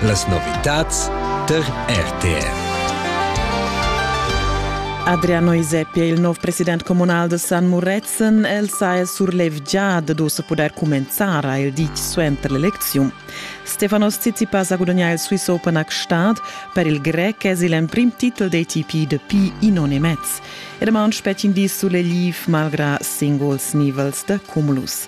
Las novitads tar RTR. Adriano Isepi è il nuovo presidente comunale de San Muretzen. El sa è surlevgià de dus poter comenzare il dic suenter l'elezione. Stefanos Tsitsipas a gudagnà il Swiss Open a Gstaad per il grec es il emprim titel dei TP de Pi Inonimez. E da mount spettin di sulle liv malgra singuls nivels de cumulus.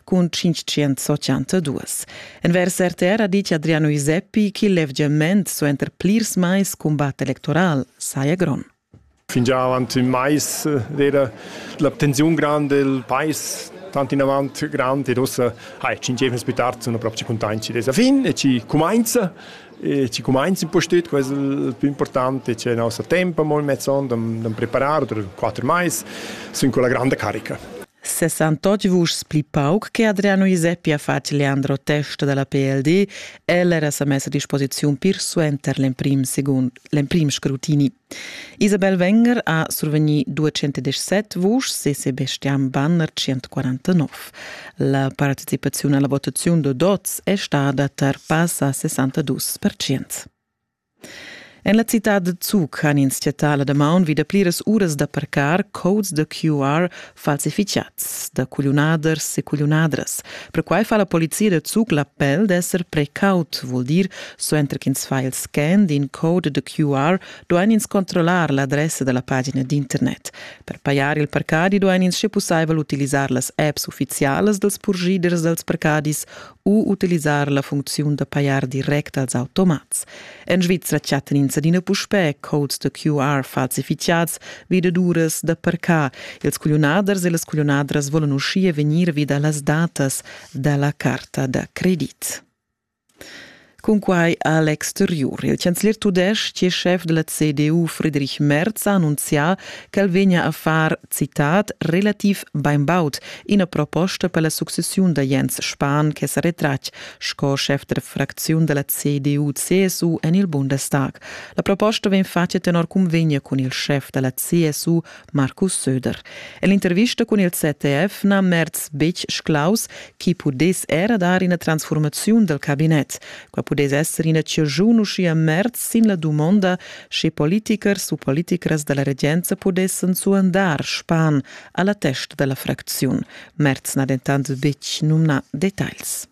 cun 582. Envers RTR ha dit Adriano Iseppi ch'il levgiament suenter plirs mais cumbat electoral saja grond. Fingià avant ün mais era l'abtenziun grand del pais tant in avant grand ed ossa hai ci giefnes più tard sono proprio contenti dessa fin e ci comincia e ci comincia un po' stüt questo il più importante c'è il nostro tempo molto mezzon da preparare per quattro mais sono con la grande carica 68 vuschs pli pauc che Adriano Giuseppi ha fatg Leandro Testa dalla PLD, el era sa mess a disposiziun pir suenter l'emprim secund l'emprim scrutini. Isabel Wenger ha survegni 217 vuschs e Sebastian Banner 149. La participaziun alla votaziun da dots è stada tar passa 62%. En la citad da Zug han ins chattà la damaun vi da pliras uras da parcar codes da QR falsificads da cugliunaders e cugliunadras. Perquai fa la polizia da Zug l'appel d'esser precaut, vul dir, suenter ch'ins fa il scan d'in code da QR, duain ins controllar l'adressa da la pagina d'internet. Per pajar il parcadi duain ins sche pussaivel utilisar las apps uffizialas dals purschiders dals parcadis u utilisar la funcziun da pajar direct als automats. En Svizra chattan ins adina puspè codes da QR falsificads vi da duras da parcar. Ils cugliunaders e las cugliunadras volan uschia vegnir vi da las datas da la carta da credit. Cunquai a l'exteriur. Il chanzler tudestg e schef da la CDU Friedrich Merz ha annunzià ch'el vegnia a far, citat, relativ bainbaud ina proposta per la successiun da Jens Spahn che sa retratg sco schef da fracziun da la CDU-CSU en il Bundestag. La proposta vegn fatga tenor cunvegna cun il schef da la CSU Markus Söder. En l'intervista cun il ZDF na Merz betg sclaus chi pudess era dar ina transformaziun dal cabinet. Qua pudess esser ina ciagiun uschia Merz sin la dumonda, sche politichers u politichers da la regenza pudessan suandar Span a la testa da la fracziun. Merz n'ha dentant betg numnà detagls.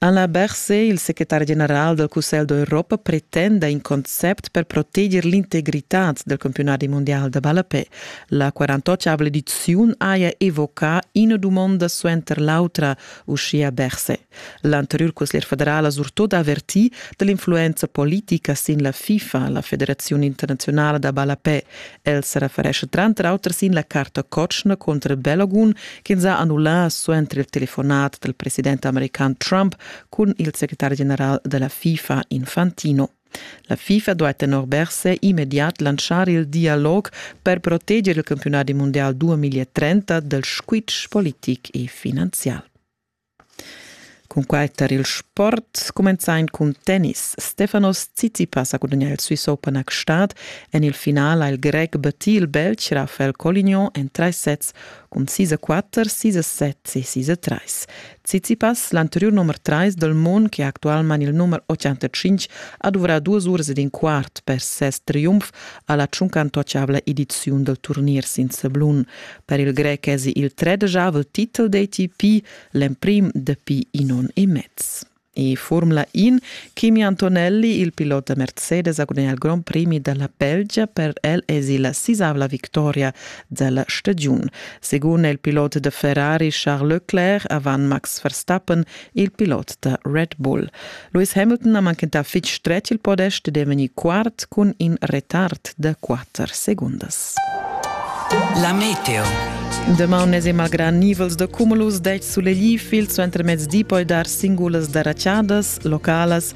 Alain Berset, il secretari general dal Cussegl d'Europa, pretenda in concept per proteger l'integritad del campionati mondial da ballapè. La 48 ediziun haja evocà ina dumonda suenter l'autra, uschia Berset. L'anteriur consiglier federal ha surtut avertì dall'influenza politica sin la FIFA, la Federazione internazionale da ballapè. El se referesce tranter auter sin la carta cotschna contro il Bellogun ch'ins ha annullà suenter il telefonat del president american Trump cun il secretari general della FIFA Infantino. La FIFA doit tenor Berse immediat lanciar il dialog per proteggere il campionato mondial 2030 del squitsch politic e finanzial. Cunquai tar il sport cumenza in cun tennis. Stefanos Tsitsipas ha gudagnà il Swiss Open a Gstaad. En il final ha il grec battì il Belg Rafael Colignon en trais sets cun 6 a 4, 6 a 7 e 6 a 3. Tsitsipas, l'anteriur nummer 3 dal mund, che è actualmain il nummer 85, ha duvrà duas uras ed in quart per ses triumf a la tschuncantuachabla ediziun dal turnier sin sablun. Per il grec èsi il tredeschavel titel d'ATP, l'emprim dapi in onn e mez. E Formula In, Kimi Antonelli, il pilot da Mercedes, ha gudagnà il Grand Prix da la Belgia. Per el èsi la sisavla victoria della stagiun. Segun il pilot da Ferrari Charles Leclerc, avant Max Verstappen il pilot da Red Bull. Lewis Hamilton ha manchentà fitg stretg il podest ed è vegnì quart cun in retard da quatter segundas. La meteo. Damaun n'es malgrà nivels da cumulus dets sulegli fil suentermezdi poi dar singulas darachadas localas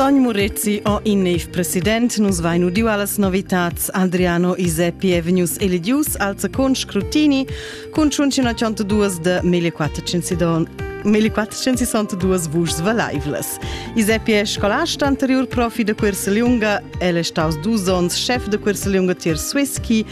Sogn Murezi o in neiv president nus vain udiu allas novitats Adriano Iseppi e vegnius eligius als con scrutini cun ciuncinacient duas de 1492 vuschs valaivlas. Iseppi è scolasta anterior profi de Curseliunga, el è staus dus onns chef de Curseliunga tier Swisky,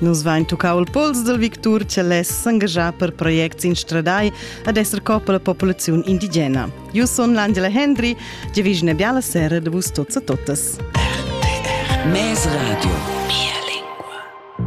Nus vain tuccau il pols dal victur che less s'engaschar per projects instradai ad esser coppa la populaziun indigena. Io son l'Angela Hendry, ge vis una biala sera de vus tots a totas. Mes Radio.